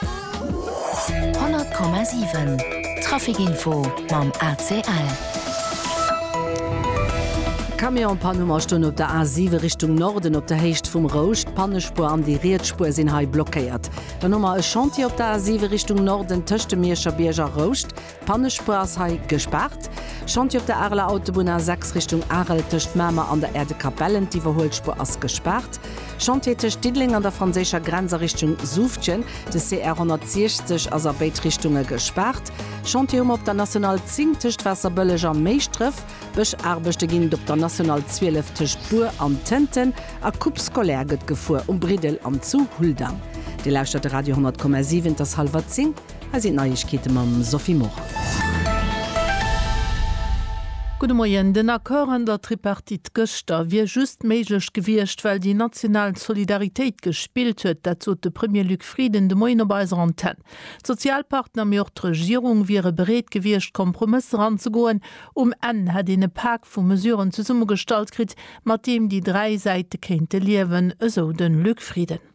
100,7 Traficinfo mam ACL. Camionspann hu mer stoen op der A7 Richtung Norden op der Héicht vum Rousch. D'Pannespuer an déi riets Spuer sinn hei blockéiert. Dann hu mer e Chantier op der A7 Richtung Norden tëscht dem Mierscherbierg a Rouscht. D'Pannespuer ass hei gespaart. Chantier op der Areler Autobunn A 6 Richtung Arel tëscht Mamer an der Erdekapellen. D'Iwwerhuelspuer ass gespaart. Chantier tëscht Diddeleng an der franséischer Grenz a Richtung Suuftgen. De CR 160 ass a béid Richtunge gespaart. Chantier hu mer op der National 10 tëscht Waasserbëlleg a Méischdref. Bëschaarbechte ginn et op der National 12 tëscht Bur an Tënten. A Coupe scolaire gëtt gefuer um Briddel an zu Huldang. Dir lauschtert de Radio 100,7. Et ass hallwer 10. Hei sinn d'Neiegkeete mam Sophie Morang. Gudde Moien. Den Accord an der Tripartite gëschter wier just méiglech gewiescht, well déi national Solidaritéit gespillt huet. Dat sot de Premier Luc Frieden de Moien op eiser Antenn. D'Sozialpartner, mee och d'Regierung wiere bereet gewiescht, Kompromësser anzegoen. Um Enn hätt een e Pak vu Mesuren zesummegestallt kritt, mat deem déi dräi Säite kéinte liewen, esou de Luc Frieden.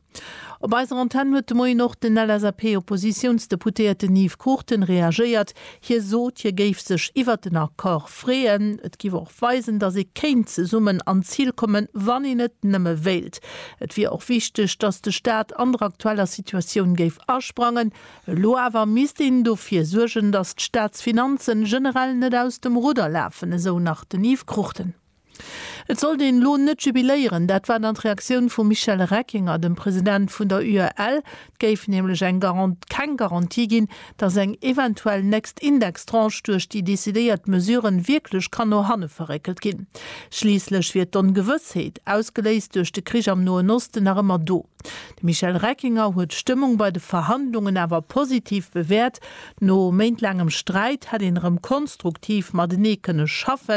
Op eiser Antenn huet de Moien och den LSAP-Oppositiounsdeputéierten Yves Cruchten reagéiert. Hie sot, hie géif sech iwwert den Accord freeën. Et géif och weisen, datt ee kéint zesummen an d'Zil kommen, wann een et nëmme wéilt. Et wier och wichteg, datt de Staat an der aktueller Situatioun géif asprangen. Elo awer misst een dofir suergen, datt d'Staatsfinanzen generell net aus dem Rudder lafen, esou nach den Yves Cruchten. Et sollt een elo net jubiléieren, dat war dann d'Reaktioun vum Michel Reckinger, dem President vun der UEL. Et géif nämlech eng keng Garantie ginn, datt eng eventuell nächst Indextranche duerch déi decidéiert Mesuren wierklech kann no hanne verréckelt ginn. Schliisslech wier d'Ongewëssheet, ausgeléist duerch de Krich am Noen Osten, nach ëmmer do. De Michel Reckinger huet d'Stëmmung bei de Verhandlungen awer positiv bewäert. No méintlaangem Sträit hätt een erëm konstruktiv matenee kënne schaffen.